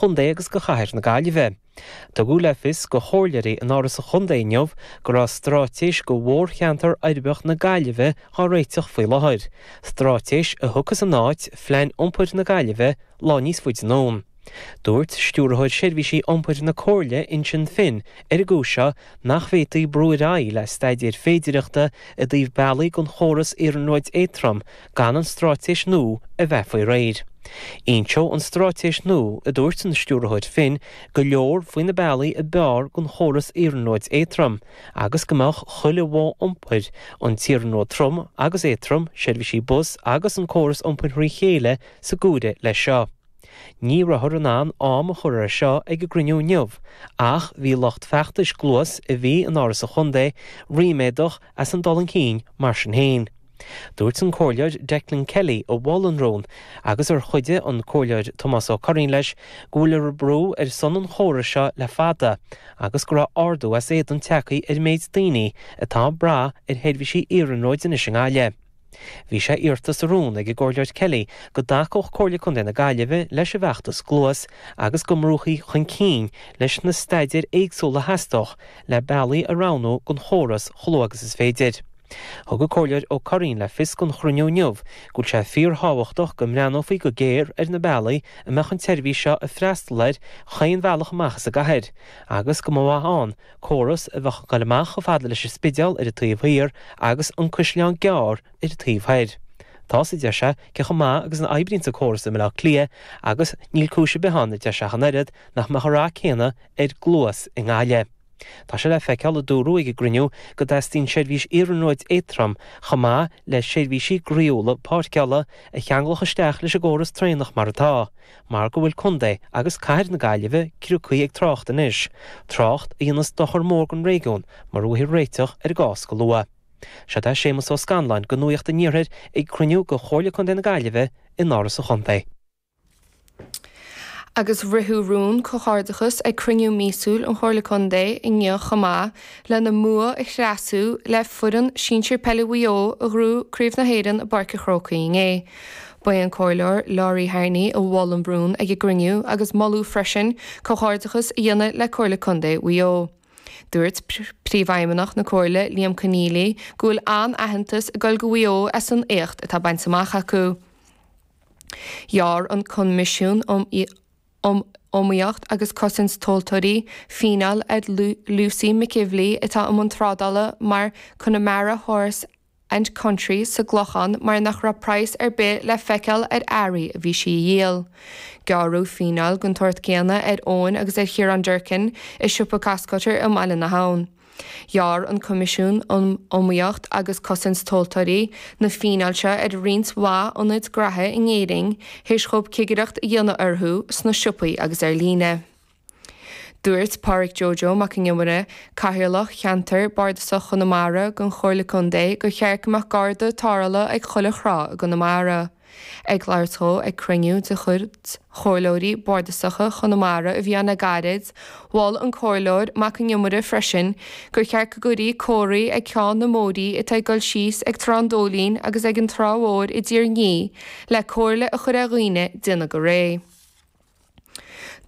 Chontae agus go Chathair na Gaillimhe. Tugadh le fios do chomhairleoirí in Áras an Chontae inniu go raibh stráitéis do mhórcheantar uirbeach na Gaillimhe á réiteach faoi láthair, stráitéis a thiocfas in áit Phlean Iompair na Gaillimhe lá níos faide anonn. Dúirt Stiúrthóir Seirbhísí Iompair na Comhairle Uinsionn Finn ar an gcúis seo nach bhféadfaí brú ar aghaidh le staidéir féidireachta i dtaobh bealaigh don chóras iarnróid éatrom gan an stráitéis nua a bheith faoi réir. Inseoidh an stráitéis nua, a dúirt an Stiúrthóir Finn, go leor faoi na bealaí a b'fhearr don chóras iarnróid éatrom agus go mbeadh chuile mhodh iompair, an t-iarnród trom agus éatrom, seirbhísí bus agus an córas iompair thrí chéile, sa gcuid leis seo. Ní rabhthar in ann am a chur air seo ag an gcruinniú inniu ach bhí lucht feachtais Gluas, a bhí in Áras an Chontae, ríméadach, as an dul chun cinn. Mar sin féin, dúirt an Comhairleoir Declan Kelly a mhol an rún, agus ar chuidigh an Comhairleoir Tomás Ó Curraoin leis, go bhfuiltear ag brú ar son an chórais seo le fada agus go raibh ardú as éadan tagtha ar an méid daoine atá ag brath ar sheirbhísí iarnróid anois i nGaillimh. Bhí sé iarrta sa rún ag an gComhairleoir Kelly go dtacódh Comhairle Contae na Gaillimhe leis an bhfeachtas Gluas agus go mbrúfaí chun cinn leis na staidéir éagsúla a theastódh le bealaí a roghnú don chóras chomh luath agus is féidir. Thug an Comhairleoir Ó Curraoin le fios don chruinniú inniu go bhfuil sé fíorthábhachtach go mbreathnófaí go géar ar na bealaí a mbeadh an tseirbhís seo ag freastal ar chaon bhealach amach as an gcathair agus go mba mhaith ann córas a bheadh ag dul amach chomh fada leis an Spidéal ar an taobh thiar agus an Caisleán Gearr ar an taobh thoir. Tá's, a deir sé, cé chomh maith agus a oibríonns an córas i mBaile Átha Cliath agus níl cúis ar bith ann, a deir sé, ach an oiread, nach mbeadh an rath céanna ar Gluas i nGaillimh. Tá sé le feiceáil, a dúradh ag an gcruinniú, go dteastaíonn seirbhís iarnróid éatrom chomh maith le seirbhísí groíúla páirceála a cheanglódh isteach leis an gcóras traenach mar atá. mar go bhfuil Contae agus Cathair na Gaillimhe ciriocaí ag trácht anois, trácht a dhéanas dochar mór don réigiún mara bhfaightear réiteach ar an gcás go luath. Seo é Séamus Ó Scanláin go Nuaíocht an Iarthair ag cruinniú go Chomhairle Contae na Gaillimhe in Áras an Chontae. Agus ritheadh rún comhghairdeachas ag cruinniú míosúil an Chomhairle Contae inniu chomh maith, lena mbua a thréaslú le foireann sinsir peile Mhaigh Eo a ghnóthaigh Craobh na hÉireann i bPáirc an Chrócaigh inné. Ba é an Comhairleoir Laurie Harney a mhol an rún ag an gcruinniú agus moladh freisin comhghairdeachas a dhéanamh le Comhairle Contae Mhaigh Eo. Dúirt Príomhfheidhmeannach na Comhairle, Liam Conneally, go bhfuil an-aitheantas ag dul go Mhaigh Eo as an éacht atá bainte amach acu. Ghearr an Coimisiún um Iomaíocht agus Cosaint Tomhaltóirí fíneáil ar Lucy McEvilly atá i mbun trádála mar 'Connemara Horse and Country sa gClochán mar nach raibh praghas ar bith le feiceáil ar earraí a bhí sí a dhíol. Gearradh fíneáil den tsórt céanna ar Eoin agus ar Chiarán Durkin i siopa Costcutter i mBaile na hAbhann. Ghearr an Coimisiún um Iomaíocht agus Cosaint Tomhaltóirí na fíneáil seo ar roinnt mhaith ionaid graithe in Éirinn théis dhóibh cigireacht a dhéanamh orthu sna siopaí agus ar líne. Dúirt Pádhraic Joe Joe Mac an Iomaire, Cathaoirleach Cheantar Bardasach Chonamara den Chomhairle Contae gur cheart go mbeadh Garda tarrthála ag chuile thrá i gConamara. Ag labhairt dhó ag cruinniú de chuid Chomhairleoirí Bardasacha Chonamara a bhí ann le gairid, mhol an Comhairleoir Mac an Iomaire freisin gur cheart go gcuirfí comharthaí ag ceann na mbóithrí atá ag dul síos ag Trá an Dóilín agus ag an Trá Mhóir i dTír an Fhia le comhairle a chur ar dhaoine déanamh go réidh.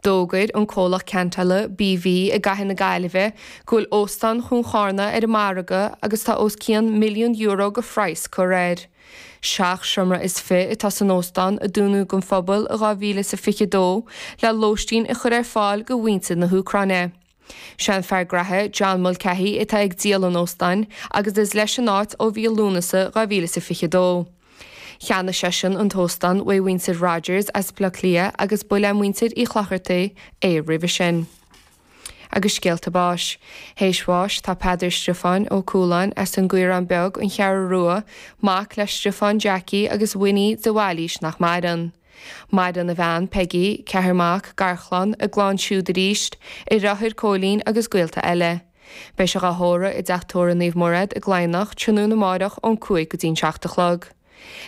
D'fhógair an comhlacht ceantála BV i gCathair na Gaillimhe go bhfuil Óstán Chuan Chárna ar an margadh agus tá os cionn milliún euro go phraghas curtha air. Seacht seomra is fiche atá san óstán a dúnadh don phobal i 2022 le lóistín a chur ar fáil go mhuintir na hÚcráine. Sé an fear graithe, John Mulcahy, atá ag díol an óstáin agus is leis an áit ó mhí Lúnasa 2022. Cheannaigh seisean an t-óstán uaidh mhuintir Rogers as Baile Átha Cliath agus ba le muintir Uí Chlochartaigh é roimhe sin. Agus scéalta báis. Théis bháis tá Peadar Stiofáin Ó Cualáin as an gCaorán Beag, An Cheathrú Rua, mac le Stiofán Jackie agus Winnie de Bhailís nach maireann. Maireann a bhean, Peigí, ceathar mac, garchlann, a gclann siúd arís, a dheartháir, Cóilín agus gaolta eile. Beidh sé dhá thórramh i dteach tórraimh Naomh Mairéad i gCladhnach tráthnóna amáireach ón cúig go dtí'n seacht a chlog.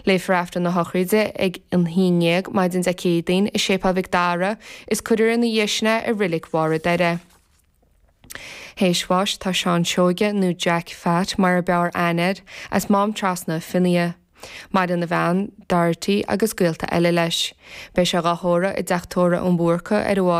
Léifear Aifreann a Shochraide ag a haon déag maidin Dé Céadaoin i Séipéal Mhic Dara is cuirfear ina dhiaidh sin é i Reilig Bharr a' Doire. Théis bháis tá Seán Seoige, nó Jack Phat mar a b'fhearr aithne air, as Mám Trasna, Fionnaithe. Maireann a bhean, Dorothy, agus gaolta eile leis. Beidh sé dhá thórramh i dteach tórraimh an Bhúrcaigh ar a.